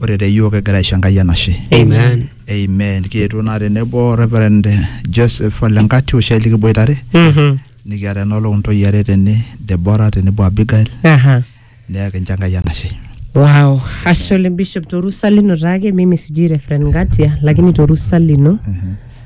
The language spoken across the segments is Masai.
Ore te yiok kigira aisho Enkai enashe. Amen. Amen. Kietuo naa tenebo Reverend Joseph Ole Nkati oshiake likiboitare Mhm. nikiata enoolong ntoyie are tene Deborah tenebo Abigail Aha. neeku kincho Enkai enashe. Wow. Ashe oleng Bishop torusa lino taake mimi sijui Reverend Ngatia lakini torusa lino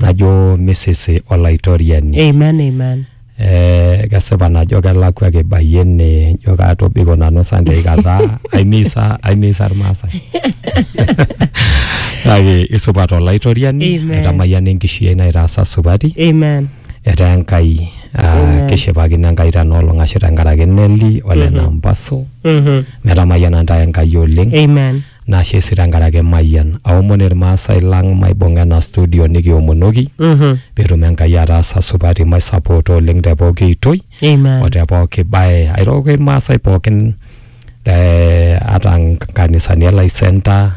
najo misisi olaitoriani Amen, amen. eh, kesipa najo kelakwa kibayie ene njo katobiko nanu sunday kata aimisa aimisa irmaasai kake isupat olaitoriani Amen. etamayiana enkishui ai naitaasa supati Amen. etaa enkai ah, Amen. kishipakino enkai tenoolong ashu tenkaraki neli ole nampasu Mhm. metamayiana ntae enkai oleng Amen. Nashe sii tenkaraki Mayian. Aomon Ilmaasai lang maibung'a ena studio nikiomonoki Mhm. peetum Enkai ataasa supati maisapoota oleng te pooki oitoi o Amen. te pooki bae. Airoroki Ilmaasai pookin eh, ata nkanisani e Lai Center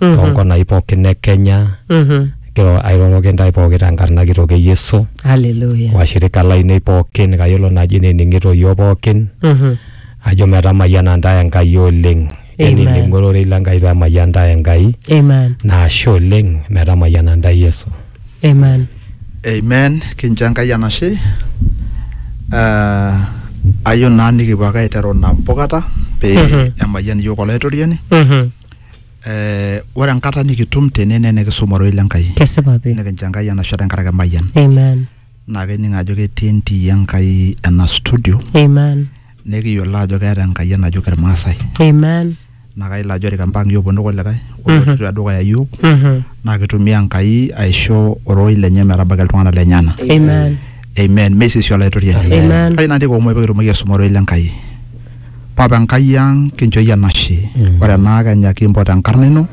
Mhm. toonkonai pookin e Kenya. Mhm. Kiro- Airoroki intae pooki tenkarna kitok e Yesu. Hallelujah. Washirika lainei pookin kayiolo naaji nening'ito iyiook pookin Mhm. ajo metamayiana intae Enkai oleng. Amen. Eniling'o ororei le Nkai peemayian ntae Enkai Amen. na ashe oleng metamayiana ntae Yesu. Amen. Amen, kincho Enkai enashe. Ah, ayieu naa nikipuo ake aiteru nabo kata pee Mhm. emayian iyiook Olaitoriani. Mhm. Eh, ore enkata nikitum tene naa enikisuma ororei le Nkai. Kesipa pi. Nikincho Enkai enashe tenkaraki emayian. Amen. naa kening ajo ketii entii Enkai ena studio Amen. nekiyiolo ajo keeta Enkai enajo kirmaasai Amen. naa kayiolo ajo ore kempang iyiook ponu kulikae olotu tedukuya iyiook Mhm. naa kitumia Enkai aisho ororei lenye metabaiki iltung'anak lenyena Amen. amen meisisi olaitoriani Amen. kayieu narik omoi pikitumoki aisuma ororei lenkai papa enkai ang kinchooyie enashe ore ena kenya kimpot enkarna ino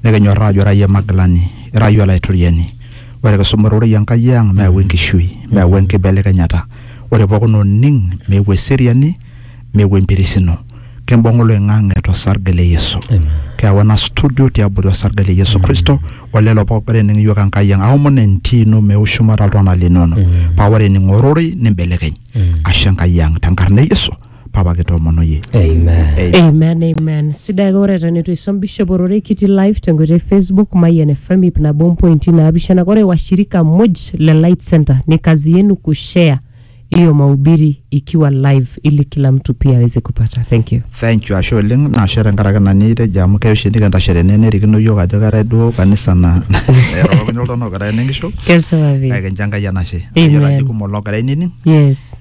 Nikinyorraa ajo ira iyie Magilani, ira iyie Olaitoriani. Ore kisuma ororei Enkai ang meyau enkishui, meyau enkibelekenyata. Ore pookin oning meeu eseriani, meeu empirisino. Kimbung oloing'ang'e to sarge le Yesu. Keyau ena studio tiabori osarge le Yesu Kristo o lelo pooki ogira aning iyiook Enkai ang. Aomon entii ino meeu shumata iltung'anak linono paa ore ening ororei nimbelekeny. Ashe Enkai ang tenkarna e Yesu. papa kitoomonoyie Amen. amen amen sidai ake ore eton eitu isom bishop ororei kiti live tenkoitoi e facebook mayian fm ip nabo mpointi naapishana ore washirika muj le light center ni kazi yenu kushare hiyo mahubiri ikiwa live ili kila mtu pia aweze kupata thank you thank you ashe oleng naashe tenkaraki ina nitejo amu keya oshi nikintashe tene nerikino yiok ajo keetae duo kanisa na erorokini oltung'ani ogira enenkisho kesipa pi kake kincho enkai enashe Amen. ayiolo ajo kumok loogira ainining yes